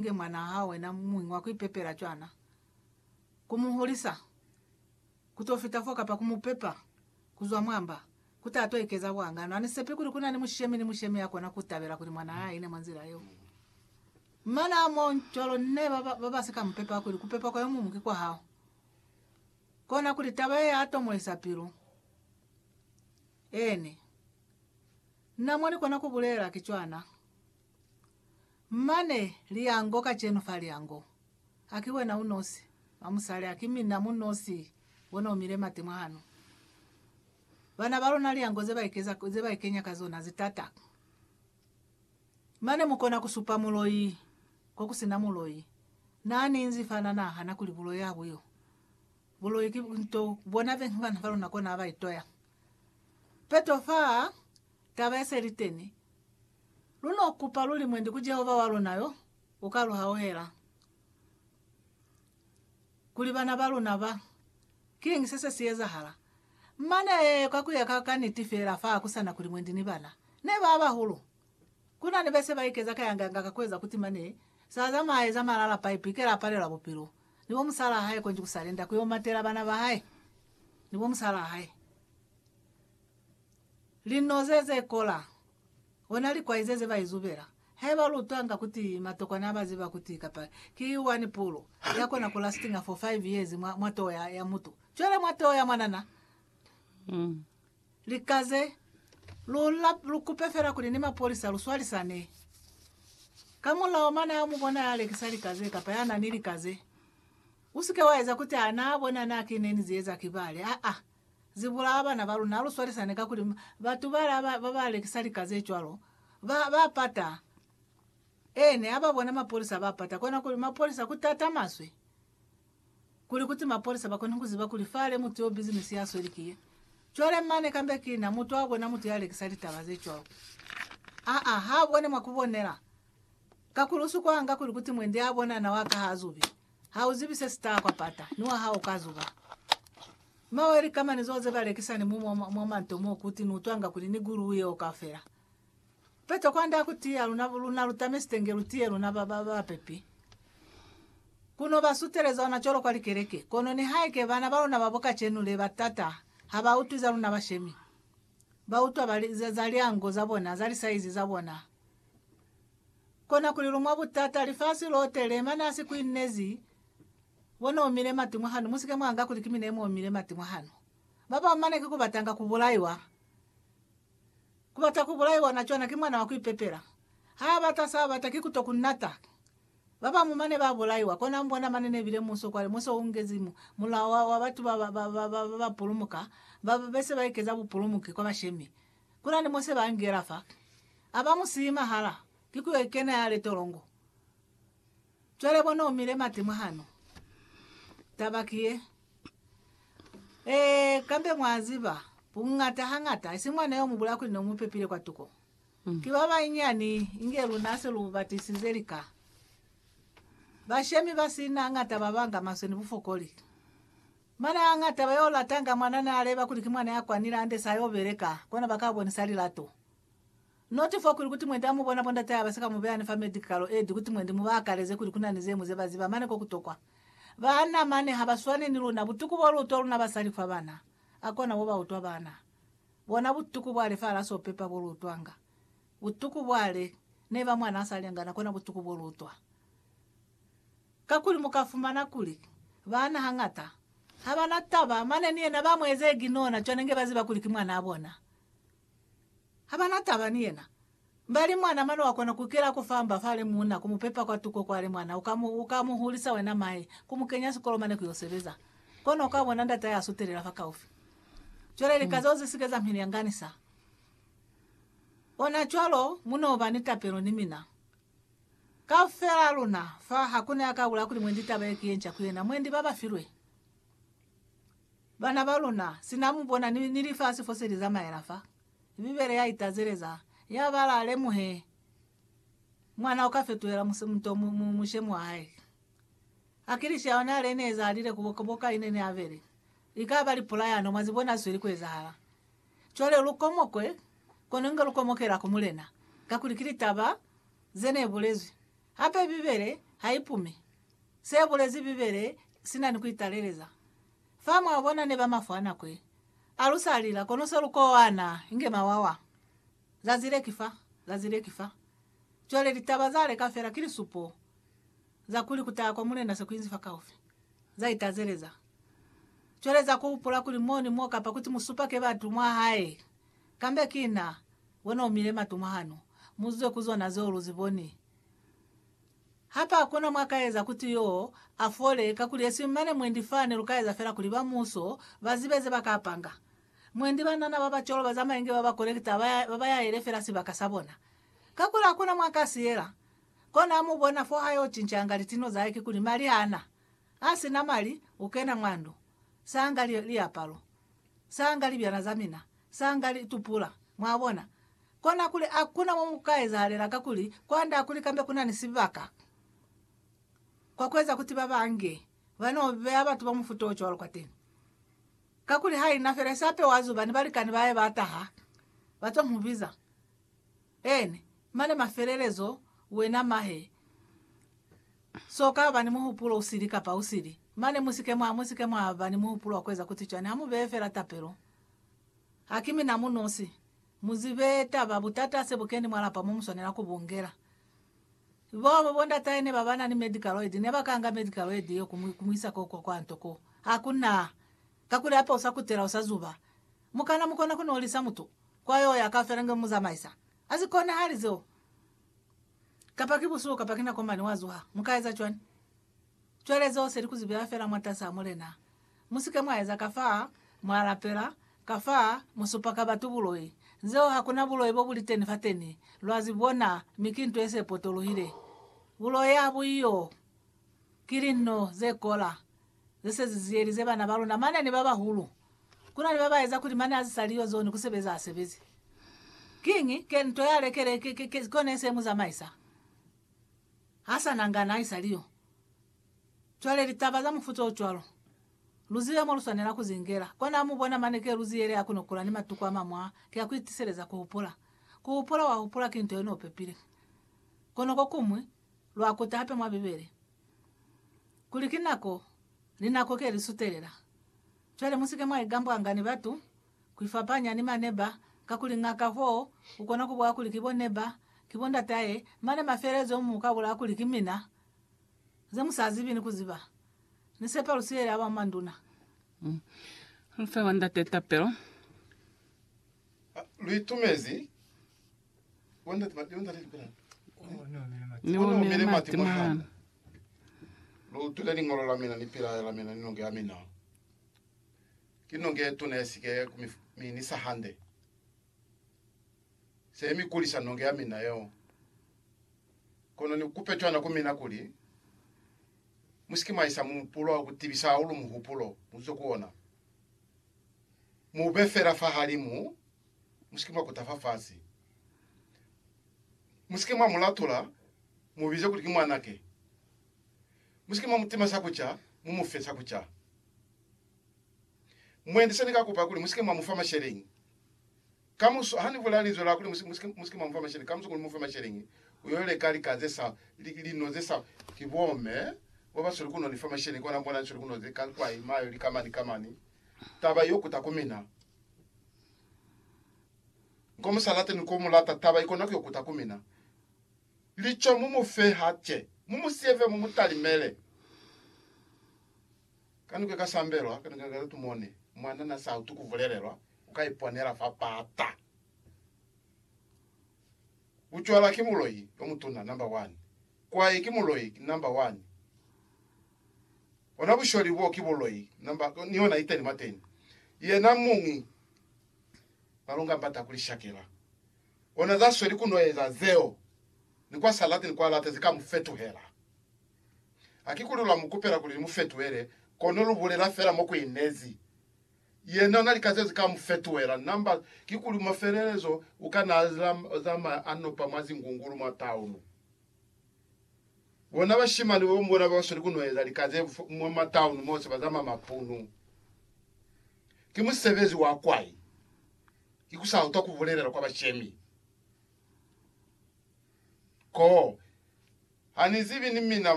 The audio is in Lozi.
nge mwanaa hawe na muñwi wa ku ipepela cwana, ku mu hulisa, ku t'o fita fo kapa ku mu pepa ku zwa mwa mba, ku ta t'o ikeza buhangano. Ha ni sepi kuli ku na ni mushemi ni mushemi ya kona ku tabela kuli mwanaa a ine mwa nzila yeo. Mane ha m'o cwalo, n'e ba ba ba si ka mu pepa kuli ku pepa kwa yo muñwi ki kwa hao. Kona kuli taba ye ya tomolisa pilu. Eeni. Na mo ni kona ku bulela, ki cwana. Mane, Lyango, kacenu fa lyango. Ha ki wena unosi, mwa musali, ha ki mina mu nosi, wena umile mati mwahanu. Bana ba luna lyango ze ba ikeza, ze ba ikenya ka zona, zitata. Mane mukona ku supa muloi, ko ku sina muloi. Na ni inzi fa na nahana kuli buloi ha bu yo. Buloi ki nto, bona bena ba luna kona ha ba itoya. Peto fa, Taba ye se li teni, lu n'o kupa luli mwendi ku Jehova wa luna yo u ka lu hauhela kuli bana ba luna ba. Kiñi se se si ezahala? Mane, kwa ku ya ka ka niti fela, fa ku sa na kuli mwendi ni bana ne ba bahulu, ku na ni be se ba ikeza kayangayanga ka ku eza kuti mane s'a zamaya a eza malala paipu i kela a palelwa bupilo ni bo musalaa hae konji ku sa lenda ku y'o matela bana ba hae ni bo musalaa hae. Linoze ze kola, ona likwaize ze ba izubela, haiba lu twanga kuti matokwana a ba ziba kuti kapa ki one pulu ya kona ku lastinga for five years mwa, mwa toho ya, ya mutu. Cwale mwa toho ya mwanana, lika ze, lu, la, lu kupe fela kuli ni mapolisa lu swalisane. Ka mulao mane ha mu bona ya lekisa lika ze kapa ya na ni lika ze, u si ke wa eza kuti ha na bona na ki ne ni zi eza ki bale. Aa. Ze bulaa bana ba luna. Lu swalisane kakuli batu bala ba ba lekisa lika ze cwalo ba, ba pata. Eene, ha ba bona mapolisa ba pata. Kona kuli, Mapolisa, ku tata maswe kuli kuti mapolisa ba kone ku ziba kuli fale mutu yo bizinisi ya sweli ki ye. Cwale mane kambe ki na mutu a bona mutu ya lekisa litaba ze cwalo. Aa, ha bone mwa ku bonela. Kakuli u si kwanga kuli kuti mwendi a bona na wa kaha zubi. Ha u zibi se si taha kwa pata, ni wa hao u ka zuba. Mwa wa likamani zeo ze ba lekisa ni mumu mwa manto mo ku ti ni utwanga kuli ni guluu yeo kaufela. Peto kwande ha ku tiya luna, luna lu tamesite nge lu tiye luna ba, ba, bapepi. Ku no ba suteleza ona cwalo kwa likeleke. Kono nihaike bana ba luna ba bo kacenu le ba t'ata, ha ba utwi za luna bashemi. Ba utwa ba li, za, za lyango za bona, za lisaizi za bona. Kona kuli lu mwa butata, lifasi lote le mane a si kuinezi, bo ne omile mati mwa hanu, musike mwa nga kuli ki mine mo omile mati mwa hanu. Ba bañwi mane ki ku batanga ku bulaiwa. Ku bata ku bulaiwa na cwana ki mwana wa ku ipepela. Ha a bata sa bata ki ku to ku nata. Ba bañwi mane ba bulaiwa, kona mbona mane ne bile muso kwale, muso u ngezi mu, mulao wa, wa batu ba ba, ba, ba, ba, ba ba pulumuka, ba, ba be se ba ikeza bupulumuki kwa bashemi. Kuna ni Mose ba ngela fa, a ba mu siyi mahala, ki ku yo kena ya le tolongo. Cwale bona u mile mati mwahanu. Taba ki ye. Ee, kambe mwa ziba, bungata hangata, isi mwana yo mu bulaya kuli ne u mu pepile kwa tuko. Ki ba banyinyani, inge luna se lu ba tisize lika. Bashemi ba sina hangata ba banga maswe ni bufokoli. Mana a ñata ba yo latanga mwana n'a leba kuli ki mwana ya kwa nilande sa yo beleka, kona ba ka bonisa lilato. Noti fo kuli kuti mwendi a mu bona bo ndate haba si ka mu beya ni fa medi kalo edi kuti mwendi mu ba akaleze kuli ku na ni ze mu ze ba ziba mane ko ku tokwa. Bana mane ha ba swane ni luna, butuku bo lu utwa luna basali fa bana, a kona bo ba utwa bana bona butuku bwale fa ala so pepa bo lu utwanga butuku bwale neba mwana a sa lengana kona butuku bo lu utwa. Kakuli mu ka fumana kuli, baana hañata ha ba na taba, mane ni yena ba mu eza iginona cwale nge ba ziba kuli ki mwanaa bona. Ha ba na taba ni yena. Mba li mwana, mane wa kona ku kela ku famba fa le muuna, ku mu pepa kwa tuko kwa le mwana, u ka mu, u ka mu hulisa wena mahe, ku mu kenya sikolo mane ku yo sebeza. Kono u ka bona ndatahe a sutelela fa kaufi. Cwale lika zeo ze si ke za mi lyanganisa. Ona cwalo, mu no ba ni tapelo ni mina. Kaufela luna, fa, hakuna ya ka bula kuli mwendi taba ye ki ye nca ku yena. Mwendi ba ba filwe bana ba luna, sina mu bona, ni, ni lifasi fose li zamaela fa. Bibele ya itazeleza, ya bala, Lemuhe, mwana uka fetuhela muse, muto, mu, mu, mushemi wa hae. Akilishi ya ona le ne ezalile ku boka, boka ine ne abele. Likaba lipula yano, mwa zibona zisweli ku ezahala. Cwale lu komokwe, kono inge lu komokela ku Mulena, kakuli ki litaba ze ne bulezwi. Hape Bibele ha i pume se bulezi Bibele sina ni ku italeleza. Fa mwa bona ne ba mafwa nako ye. A lu sa lila, kono se lu kowana inge mawawa. Zazi le ki fa, zazi le ki fa. Cwale litaba za leka fela ki lisupo za kuli ku taha kwa Mulena se ku inzi fakaufi. Za itazeleza. Cwale za ku hupula kuli mo ni mo kapa kuti musupake batu mwa hae, kambe ki na, wena umile matu mwa hano, mu zwe ku zona zeo lu zi boni. Hape hakuna mwa ka eza kuti yo a fole, kakuli esiñwi mane mwendi fa ne lu ka eza fela kuli ba muuso ba zibe ze ba ka panga. Mwendi banana ba ba cwalo ba zamaye nge ba ba kolekita ba ba yaele fela sibaka sa bona. Kakuli hakuna mwa ka si yela. Kona ha mu bona fo ha yo cincanga litino za hae kikuli mali ha na. A si na mali, u kena mwa ndu, sa nga li, liapalo, sa nga libyana za mina, sa nga li, tupula. Mwabona? Kona kuli a ku na mo mu ka ezahalela kakuli kwand'a kuli kambe ku na ni sibaka kwa ku eza kuti ba ba nge, ba n'o beya batu ba mufuta o cwalo kwateni. Kakuli ha i na fela isape wa zuba ni balikani ba hae ba taha, ba t'o mu biza. En, mane mafelelezo, wena mahe, so ka ba ni muhupulo u sili kapa u sili. Mane mu si ke mwa, mu si ke mwa ba ni muhupulo wa ku eza kutsi cwani. Ha mu beye fela tapelo. Ha ki mina mu nosi. Mu zibe taba, butata se bu keni mwa lapa mo mu swanela ku bu ngela. Bo, bo, bo ndatahe ne ba ba na ni medical aid, ne ba ka nga medical aid yeo ku mu, ku mu isa ko, kwa, kwa nto ko. Ha ku na. Kakuli hape u sa kutela, u sa zuba. Mu kana mu kona ku nolisa mutu kwa yo ya ka felange mu zamaisa. Ha si konahali zeo. Kapa ki busuku kapa ki nako mane wa zuha, mu ka eza cwani? Cwale zeo se li ku zi beya fela mwatasi a Mulena. Mu si ke mwa eza ka fa, mwa lapela, ka fa, mu supa ka batu buloi. Zeo ha ku na buloi bo bu li teni fateni, lwa zi bona, mi ki nto ye se potolohile. Buloi ha bu iyo. Ki linno ze kola ze se zi ziyelize bana ba luna mane ni ba bahulu. Ku na ni ba ba eza kuli mane a si sa li yo zone, ku sebeza a sebezi. Kiñi? Ke nto ya lekele, ke, ke, ke, kone se mu zamaisa. Ha sa nangana, i sa li yo. Cwale litaba za mufuta o cwalo, lu zibe mo lu swanela ku zi ngela. Kona mu bona mane ke lu ziyele a kono kula ni matuku a mañwi a, ki a ku itiseleza ku hupula. Ku hupula wa hupula ki nto ye n'o pepile. Kono ko kuñwi, lwa kuta hape mwa Bibele, kuli ki nako ni nako ke li sutelela. Cwale musike mwa igambwanga ni batu ku ifapanya ni maneba, kakuli ng'aka foo u kona ku bwa kuli ki bo neba, ki bo ndatahe, mane mafelelezo mu ka bula kuli ki mina. Ze mu sa zibi ni ku ziba. Ni sepa lu siyeli aba manduna. Lu fe wa Ndate tapelo. Lu itumezi. Ni omile mati mwana. Lu utwile liñolo la mina ni pilayo la mina ni nonge ya mina. Ki nonge ye tuna ye si ke ku mi, mi ni sa hande. Se mi kulisa nonge ya mina yeo. Kono ni kupe cwana ku mina kuli, Mu si ke mwa isa muhupulo wa ku tibisa hahulu muhupulo mu zwe ku ona. Mu u be fela fahalimu Musike mwa kuta fafasi. Musike mwa mu latula, mu bize kuli ki mwanake. Musike mwa mu tima sa kuca, mu mu fe sa kuca. Mwendi se ni ka kupa kuli musike mwa mu fa masheleñi. Kamuso, ha ni bulela linzwi la kuli musike, musike mwa mu fa masheleñi, kamuso kuli mu fe masheleñi, u yo leka lika ze sa, li, lino ze sa. Ki bomme bo ba sweli ku no ni fa masheleñi, kona bona ni sweli ku no ze ka kwa ima yo lika mani ka mani. Taba i yo kuta ku mina. Ko mu sa late ni ko mu lata, taba ikona ku yo kuta ku mina. Lico mu mu fe hace, mu mu siye fe, mu mu talimele. Ka niko ika sambelwa, ka niko ika latu mone mwana na sa utu ku bulelelwa, uka iponela fa pata. Bucwala ki muloi yo mutuna, number one. Kwai ki muloi, number one. Bona busholi bo ki buloi namba ni yona iteni mateni. Yena muñi balonga mbata kuli shakela. Ona za sweli ku no eza zeo ni kwa sa lati ni kwa lata zi ka mu fetuhela. Hakikuli lwa mu kupela kuli ni mu fetuhele kono lu bulela fela mo ku inezi. Yena na lika zeo zi ka mu fetuhela namba kikuli mafelelezo u ka na zamaya a nopa mwa zingungulu mwa taunu. Bona bashimani babo ni bona babasweli kunoeza lika ze bufu mwa matauni mose bazama mapunu. Ki musebezi wa kwai ikusautwa kubulelela kwa bashemi. Ko, Hanizibi ni mina